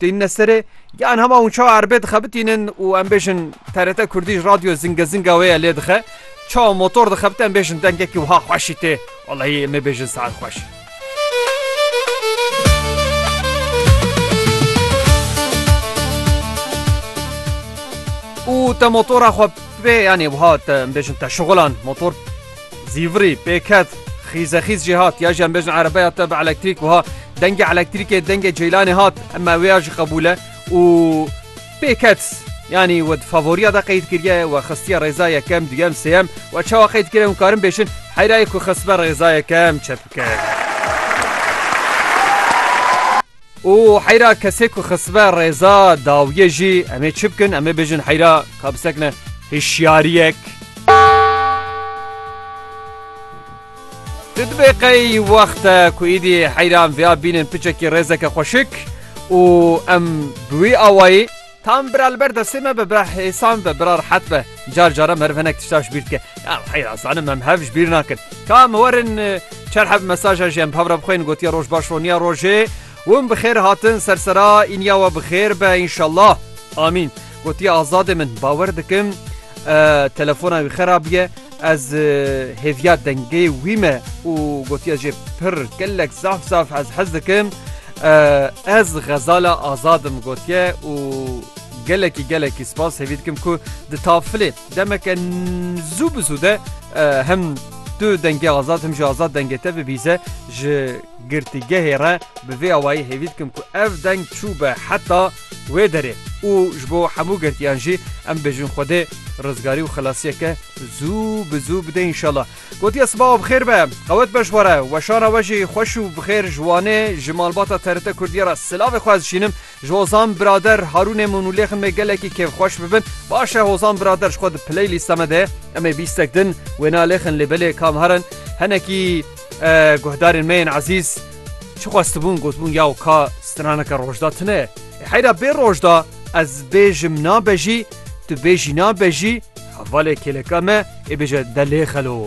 Têne serê yan hema hûn çawa erbê dixebitînin û em bêjin TRT Kurdî ji radyo Zinge Zinga wê ye lê dixe. Çawa motor dixebite em bêjin dengekî wiha xweşî tê. Wallahî em ê bêjin saet xweş. Û te motora xwe pê yanê wiha te em bêjin te şixulan motor Zîvirî, pêket, xîzexîz jî hat, ya jî em bêjin erebeya te bi elektrîk wiha, dengê elektrîkê dengê ceylanê hat, me wê ya jî qebûl e û pêket, yanî we di favoriya de qeyd kiriye, we xistiye rêza yekem, duyem, sêyem, we çawa qeyd kiriye hûn karin bêjin heyra yê ku xistbe rêza yekem çepike ye. Û heyra kesê ku xisibe rêza dawiyê jî em ê çi bikin? Em ê bêjin heyra ka bisekine hişyariyek. Di dibê qey wexte ku îdî heyran vêya bînin piçekî rêzeke xweşik û em bi wî awayî Tam bira li ber destê me be, bira hêsan be, bira rihet be. Car cara meriv hinek tişta ji bîr dike. Ya heyra zanim em hev ji bîr nakin. Ka em werin e, çar hev mesaja jî em bi hev re bixwên gotiya roj baş roniya rojê. Win bi xêr hatin sersera îniya we bi xêr be înşallah. Amîn. Gotiya azadê min bawer dikim e, telefona wî xerabiye. Ez hêviya dengê wî me û gotiye jê pir gelek zaf zaf ez hez dikim. Ez xezala azadim gotiye û gelekî gelekî spas hêvî dikim ku di tafilê demeke zû bi zû de hem tu dengê azad him ji azad dengê te bibîze ji girtîgehê re bi vê awayî hêvî dikim ku ev deng çû be heta Wê derê û ji bo hemû girtiyan jî em bêjin Xwedê rizgarî û xilasiyeke zû bi zû bide înşala. Gotiye sibawa bi xêr be, qewet be ji we re we şana we jî xweş û bi xêr ji Wanê ji malbata TRT Kurdiyê re silavê xwe ez dişînim ji Hozan birader Harûnê min û lêxin me gelekî kêfxweş bibin. Baş e Hozan birader ji xwe di playlîsta me de em ê bîstek din wêna lêxin lê belê kam herin henekî Guhdarên me yên ezîz çi xwestibûn gotbûn yaw ka straneke rojda tune ye. Heyra bê rojda ez bêjim nabe jî, tu bêjî nabe jî, hevalê kêleka me ê bêje delê xelo.